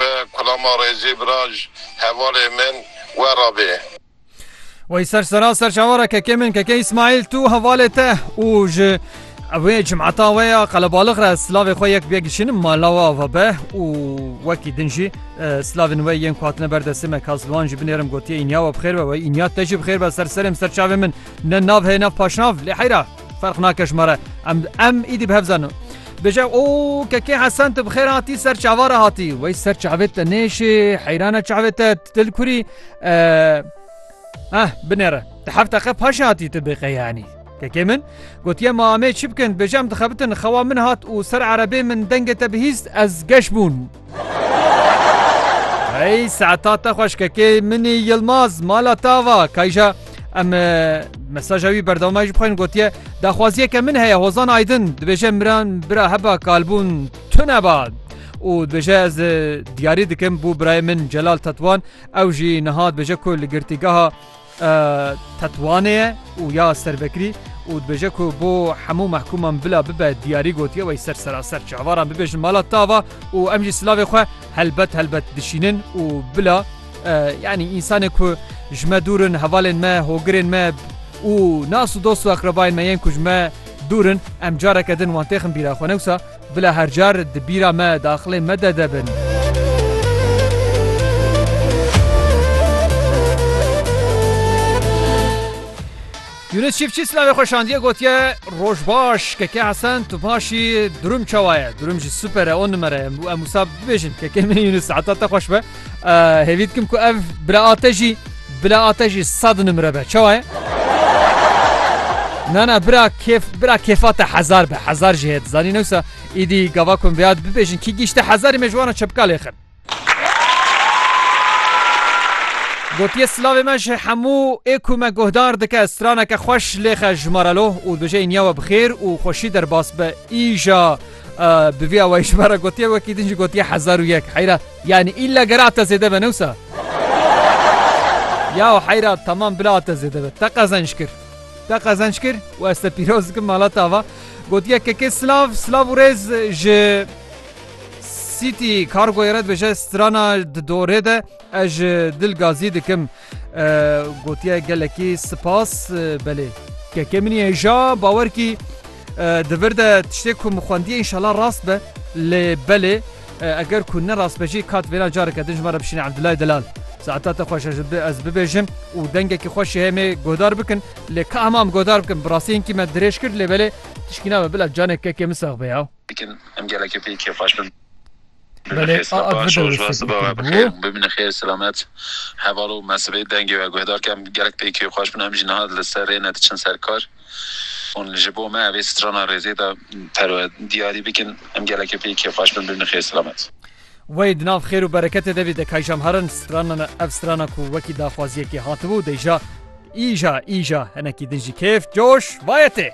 be kulama rêzê biraj hevalê min we ra bê. Wey ser sera ser çavara kekê min kekê İsmail tu hevalê te û ji wê cimata we ya qelebalix re silavê xwe yek bê gişinin malawa ve be û wekî din jî e, silavên we yên ku hatine ber destê me kazilwan jî binêrim gotiye înya we bixêr be we înya te jî bixêr be ser serêm ser çavê min ne nav heye nav paşnav lê heyra Ferq nake ji me re em em îdî bi hev zanin. Bêje û kekê hesen tu bi xêr hatî ser çava re hatî wey ser çavê te nêşê heyrane çavê te dil kurî eh binêre di hefte qe paşê hatî tu bê qeyanî kekê min gotiye ma amê çi bikin bêje em dixebitin xewa min hat û ser erebê min dengê te bihîst ez geş bûn. Hey saeta te xweş kekê minî Yilmaz mala tava kayja em mesaja wî berdewma ji bixwên gotiye daxwaziyeke min heye hozan aydin dibêje miran bira heba kalbûn tune ba û dibêje ez diyarî dikim bû birayê min celal tetwan ew jî niha dibêje ku li girtîgeha Tetwane ye û ya servekirî û dibêje ku bo hemû mehkûman bila bibe diyarî gotiye wey ser seraser çawaran bibêjin mala tava û em jî silavê xwe helbet helbet dişînin û bila yanî însanên ku ji me dûr in hevalên me hogirên me û nas û dost û eqrebayên me yên ku ji me dûr in em careke din wan têxin bîra xwe newsa Bila her car di bîra me daxilên me de de bin. Yunus Çiftçi silavê xwe şandiye gotiye roj baş keke Hesen tu paşî durum çawa ye durum jî super e on numere em wisa bibêjin keke min Yunus heta te xweş be. Hêvî dikim ku ev bila ate jî bila ate jî sad nimre be çawa ye? Na na bira kêf bira kêfa te hezar be hezar jî heye dizanî newsa îdî gava ku bi yad bibêjin kî gîşte hezarî me ji wana çepka lê xin. Gotiye silavê me ji hemû ê ku me guhdar dike straneke xweş lêxe ji me re lo û dibêje îniya we bixêr û xweşî derbas be îja bi vîya we ji me re gotiye wekî din jî gotiye hezar û yek heyra Yanî îlla gera te zêde be ne wisa? Yaw heyra temam bila te zêde be. Te qezenç kir. Te qezenç kir û ez te pîroz dikim mala te ava. Gotiye kekê silav, silav û rêz ji City Cargoyê re dibêje strana di dorê de ez ji dil gazî dikim. Gotiye gelekî sipas belê. Kekê min î hêja bawer kî Di vir de tiştê ku min xwendiye înşala rast be lê belê eger ku ne rast be jî kat vêna careke din ji me re bişîne Abdullah Delal. Saeta te xweş ez bibêjim û dengekî xweş jî heye me guhdar bikin lê ka hema em guhdar bikin bi rastî hinkî me dirêj kir lê belê tişkî nabe bila canê kekê min sax be ya. Dikin em gelekî pê kêfxweş bin. Belê a a di vir de wê sibê kir bû. Bimîne xêr selamet heval û me sibê dengê we guhdar ke em gelek pê kêfxweş bin em jî niha li ser rê ne diçin ser kar. Hûn ji bo me vê strana rêzê de perwe diyarî bikin. Em gelekî pê kêfxweş bin. Bimînin xêr selamet. Wey di nav xêr û bereketê de bî de Kayjam herin stranan e ev strana ku wekî daxwaziyekê hatibû dêja îja îja hinekî din jî kêf coş vayetê.